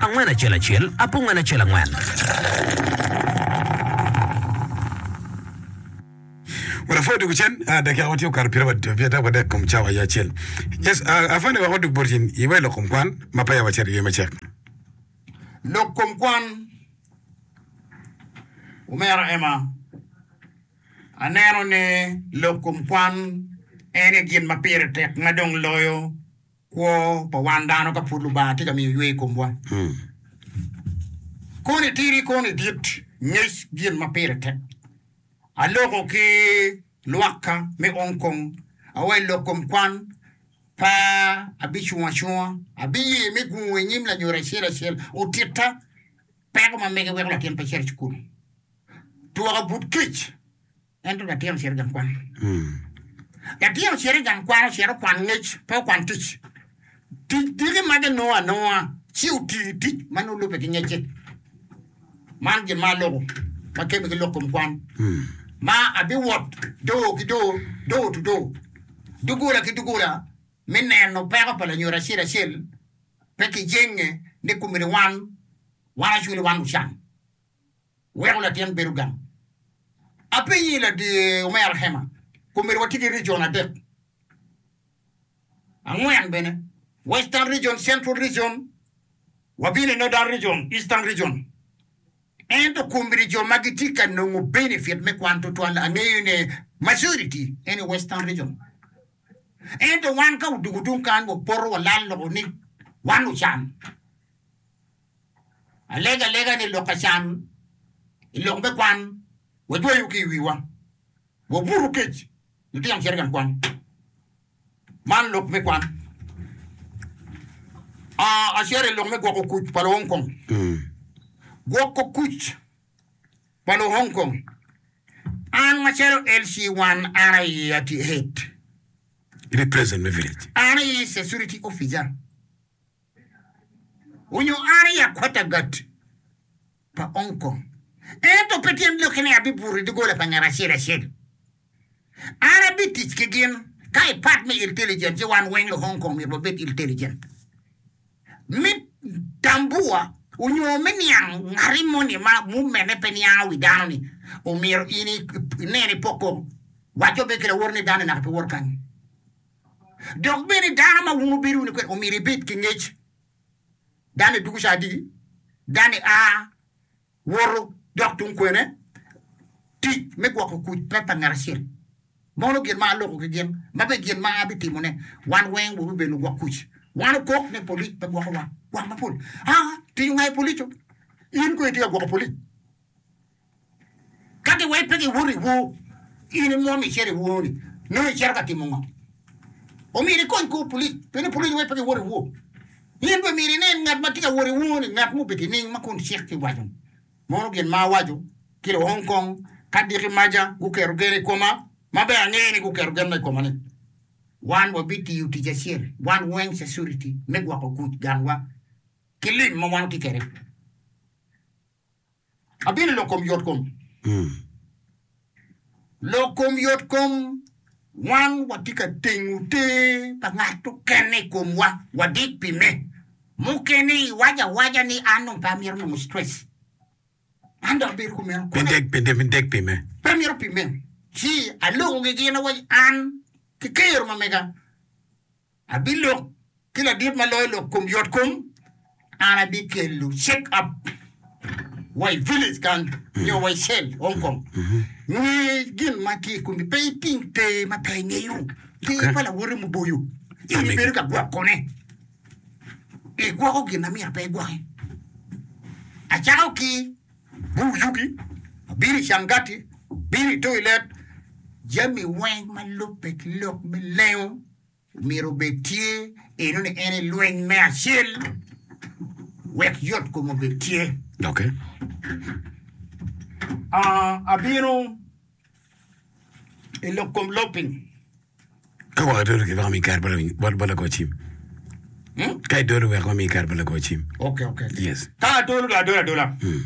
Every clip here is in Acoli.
Angwen acel acel, apungwen acel angwen. Wek apwony doko cen, dakika watye okato pyera pyera wadek kom cawa aye acel. Yes, ah, afande wek wadog bot in, iwa i lok kom kwan ma peya wacito iye me cek. Lok kom kwan, Omera Emma, aneno ni lok kom kwan en aye gin ma pire tek ma dong loyo Kwo pa wan dano ka pud Lubanga tye ka miyo ywe i komwa koni itiri koni idit, ngec gin ma pire tek. Aloko ki lwakka me Hong Kong, awe i lok kom kwan pa abicung acunga, abiye me gungo i nyim lanyodo acel acel otitta peko ma mege weko latin pe cito i cukul. Twaka but kic. Ento latin ocito i gang kwan. Latin ocito i gang kwan, ocito okwan ngec, pe okwan tic. Tic dyegi magi nongo anonga, ci oti i tic ma nongo lubbe ki ngecce. Man gin ma aloko ma kebe ki lok kom kwan, ma abiwot doo ki doo, door to door, doggola ki doggola, me neno peko pa lanyodo acel acel, pe ki jenge ni komiti wan, wan acwele wan lucan. weko latin bedo gang. Apenyi ladie omera Hema, kombeddi watye ki region adek, angwen bene, Western Region, Central Region, wabino i Northern Region, Eastern Region. Ento kombeddi jo ma gitye ka nongo benefit me kwan twatwal angeyo ne majority en i Western Region. Ento wan ka odugu tung kany wapoto walal loko ni wan lucan. Alego alega ni lok acan i lok me kwan wajweyo ki i wiwa. Wabutu kec lutino cito i gang kwan. Man lok me kwan. Acito i lok me gwoko kuc pa luhong kong. Gwoko kuc pa luhong kong. An macalo LC wan an aye atye head. An aye security officer. onyo an i akwata gat pa Hong Kong, ento pe tyen lok ki ni abibuto i doggola pa ngat acel acel. An abitic ki gin ka i part me iltelligent ci wan weng lu Hong Kong myero wabed iltelligent. Me tambua onyo me niang ngati moni ma movement ne pe niango wi dano ni omyero in inen ipoko, waco be ki lawotone dano naka pe wot kany. Dok bene dano ma wun wubedo wunu kwede omyero ebed ki ngec. Dano-ni dugo ca adiki, dano-ni a woto dok tung kwene. Tic me gwoko kuc pe pa ngat acel. Mono gin ma aloko ki gin, ma bene gin ma abitimone. Wan weng wabibedo lugwok kuc. Wan okok ni polic pe gwokowa gwok mapol. Aa, tic ongayo polic-cu. In kono itye ka gwoko polic? Ka giwaci pe giwoto i wor, ci in imwom icito i wor-ni, nongo icito ka timo ngo? Omyero ikony kor pulic pi ni pulic owaci pe giwoto i wor. In bene myero inen ngat ma tye ka wot i wor-ni, ngat ma obedo nining ma kun cik tye ka waco ni, Mono gin ma awaco ki luong kong ka diki maca guketo gen i koma, ma bene angeyo ni guketo gen ma i koma ni, Wan wabitiyo tic acel, wan weng cacuriti me gwoko kuc ganwa ki lim ma wan watye kwede? Abino lok kom yot kom. Lok kom yot kom, Wan watye ka tengo ter pa ngat okene i komwa, wadik pi me. Mukene iwaco awaca ni an dong pe amito nongo stress. An dong abedo kumeno. Pe idek, pe idek pi me. Pe amito pi me. Ci aloko gigin awaco an ki kero ma mega Abilok ki ladit ma loyo lok kom yot kom, an abikelo shake up wa i village kany nyo wa i cell Hong Kong. Nge gin ma tye i komi, pe iting te ma pe ingeyo. Te pa lawote muboyo, in ibedo ka gwokone. Igwoko gin na myero pe igwoki. Acako ki bur yugi, abino i cangati, abino i toilet, jami weng ma lubbe ki lok me lengo. Omyero obed tye eno ni en i lweny me acel wek yot kome obed tye. Doki. Ah, abino i lok kom lopiny. Ka wek adolo ki wek ami kare bal bal lago cim. Hmm? Ka idolo wek ami kare bal lago cim. Okay, okay. okay. Yes. Ka adolo do adola adola. Hmm.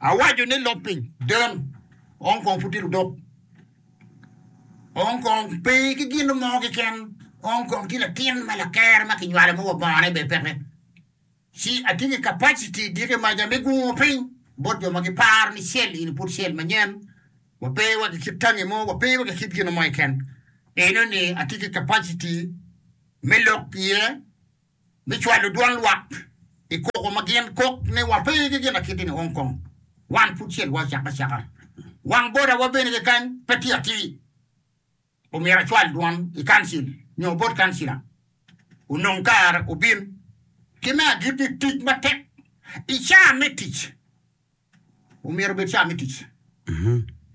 Awaco ni lopiny den ong kong putiro dok. Ong kong pe ki gin mo keken, Ong kong tye latin me laker ma kinywalo ma wa bongone bene peke. Ci atye ki capacity diki maca me gungo piny bot jo ma giparo ni cell in pud cell manyen, wa pe wa ki kit tangi mo, wa pe wa ki kit gin mo keken. Enoni atye ki capacity me lok iye. me cwalo dwan lwak i koko ma gin kok ni wa pe ki gin akit-ti ni Hong Kong, wan pud cel wa acaka acaka. Wang boda wa bene kekany pe tye atir. Omyero acwal dwan i kancil nyo bot kancila onong kare obin. Ki me agit ni tic matek i caa me tic. Omyero obed caa me tic.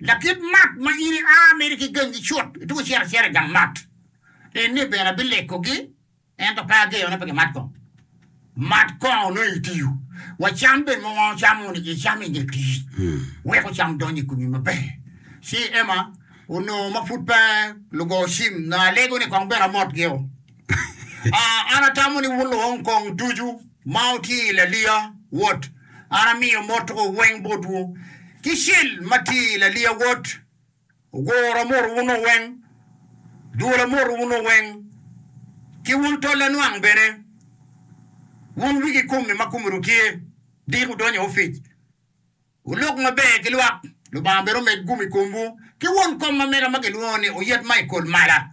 Lakit mat ma in ia mere ki gangi cut, ituko ciro acira i gang mat. En ni bene abilekogi, ento pe ageyo ni pe gimat kong. Mat kong onongo itiyo, wa cam bene ma wan ocamo ni icamo i nge tic, weko cam dony i komi maber. Ci Emma onongo ma pud pe lugo cim, nongo alego ni kong bene amot gio. Aa, an atamo ni wulong kong ducu ma wutye i laliya, wot, an amiyo motwu weng botwu. Ki cel ma tye i laliya, wot, oguro motwu-nu weng, dwola motwu-nu weng, ki wun tol anwang bene, wun wigi kome ma komeru tye dik wudonyo ofic. Wulok maber ki lwak, Lubanga bene omed gum i komwu, ki won kom ma mega ma kilwongo ni oyet ma i kol mala.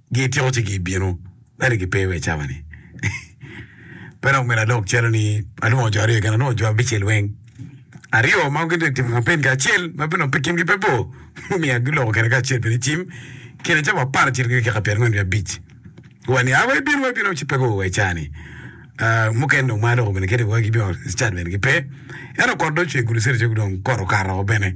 gityeko ci gibino ento gipe wa i cawa-ni. Pe dok myero adog calo ni alwongo jo aryo keken, alwongo jo abicel weng. Aryo ma gitye ka timo kampen ki acel ma bino pe kingi pe bor mumiya giloko kene kacel bene cim kine cawa aparacel ki dakika pyerangwen ki abic. Wa ni, 'A wa ibin, wa ibin, wa ci pe guo wa i caa-ni. Ah, mukene dong ma aloko bene kit-ti wa gibino i cat bene gipe. Ento kot dong ocwe gulu cere calo dong kot okato woko bene.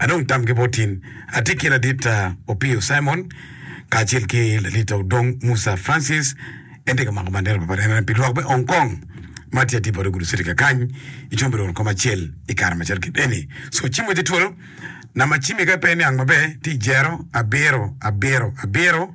Adong tam ki bot in. Atye ki Ladita Opio Simon kacel ki Ladita Odong Musa Francis. En tye ka mako bandera pa parene pi lwak me Hong Kong ma tye atir bot ogudu citi kakany i combere won kom acel i kare macalo kit eni. So cim wacce twolo. Namba cim ika pe niang maber tye 0 abiro abiro abiro.